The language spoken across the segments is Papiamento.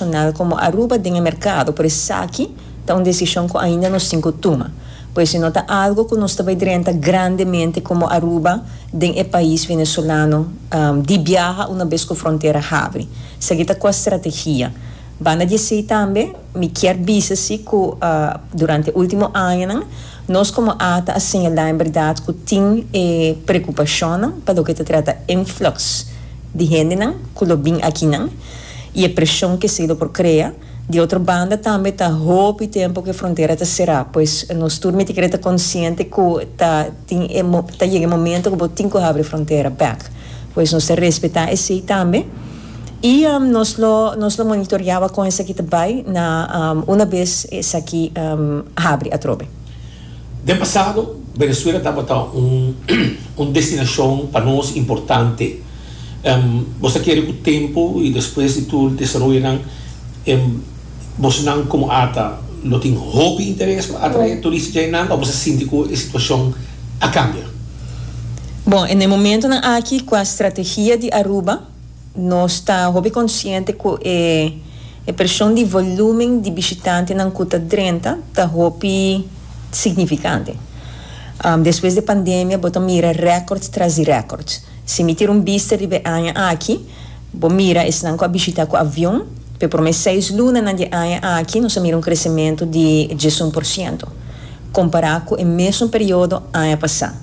nacional como Aruba den e mercado, por esaki ta un decision cu ainda nos tin cu tuma, por esi no ta algo cu nos ta bay drenta grandemente como Aruba den e pais Venezolano di biaha una bes cu frontera habri. Esaki ta cua strategia. Banda di esey tambe mi kier bisa si cu durante e ultimo añanan nos como ata a señala en berdad cu tin e preocupacionnan pa loke ta trata influx di hendenan cu lo bin akinan, y e presion ke Cedo por krea. Di otro banda tambe ta hopi tempo ke frontera ta sera, pues nos tur mi ta kere ta konsiente ku ta tin e ta yega e momento ku bo tin ku habri e frontera bek, pues nos ta respetá esei tambe y nos lo nos lo monitorea wakon esaki ta bai na una bes esaki habri atrobe. Den pasado, Venezuela tabata un destinacion pa nos importante. Bo ta kere cu tempo y despues di tur desaroyonan bosnan como Ata lo tin hopi interes pa atrae turista djainan of bo ta sinti cu e situacion a cambia? Bon, e na e momentonan aki cu e strategia di Aruba. Nos ta hopi konsiente ku e e preshon di volúmen di bishitantenan ku ta drenta ta hopi signifikante. Despues di e pandemia bo ta mira rèkòrds tras di rèkòrds. Si mi tira un bista riba e aña aki, bo mira esnan ku a bishitá ku avion, pa e promé seis lunanan di e aña aki nos a mira un kresementu di diesun por siento, kompará ku e mesun periodo aña pasá.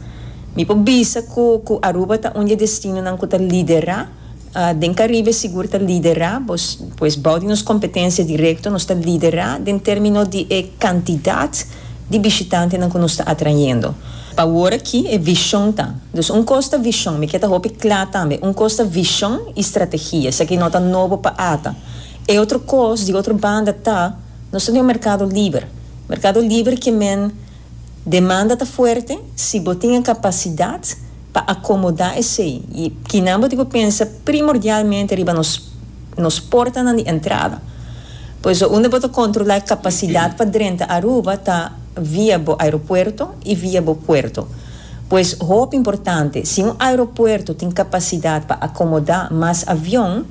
Mi por bisa cu cu Aruba ta un di e destinonan cu ta lidera. Den Caribe sigur ta lidera, pues bou di nos competencia directo nos ta lidera den termino di e cantidad di bishitantenan cu nos ta atrayendo. Pa awor aki e vision ta, dus un cos ta vision, mi kier ta hopi cla tambe, un cos ta vision y strategia, esaki no ta nobo pa ata. E otro cos di otro banda ta, nos ta den un mercado liber, mercado liber ke men, Demanda ta fuerte si bo tin e capacidad pa acomoda esey y kinan bo tin cu pensa primordialmente riba nos nos portanan di entrada. Por eso unda bo ta controla e capacidad pa drenta Aruba ta via bo aeropuerto y via bo puerto. Pues hopi importante si un aeropuerto tin capacidad pa acomoda mas avion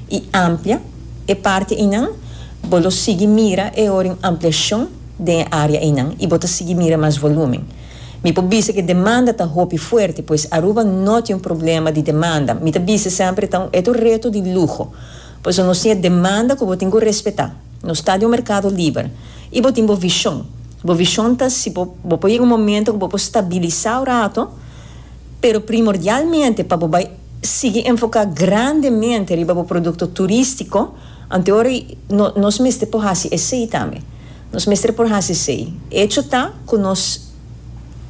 y amplia e parte eynan, bo lo sigui mira e ora di un ampliacion. den e área einan i bo ta sigui mira mas volúmen. Mi por bisa ku e demanda ta hopi fuerte, pues Aruba no tin un problema di demanda. Mi ta bisa semper e ta un e ta un reto di luho. Paso nos tin e demanda ku bo tin ku respetá. Nos ta den un merkado liber. I bo tin bo vishon. Bo vishon ta si bo bo por yega un momento ku bo por stabilisá un rato, pero primordialmente pa bo bai sigui enfoká grandemente riba bo produkto turístiko, anto ora nos mester por hasi esei tambe. Nos mester por hasi esei. Echo ta cu nos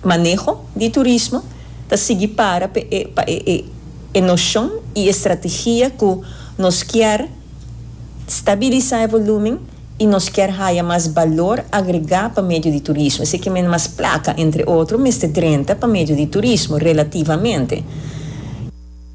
maneho di turismo ta sigui para pa e pa e e e nocion y e strategia cu nos kier stabilisa e volumen y nos kier haya mas balor agrega pa medio di turismo. Esei ke men mas placa entre otro mester drenta pa medio di turismo, relativamente.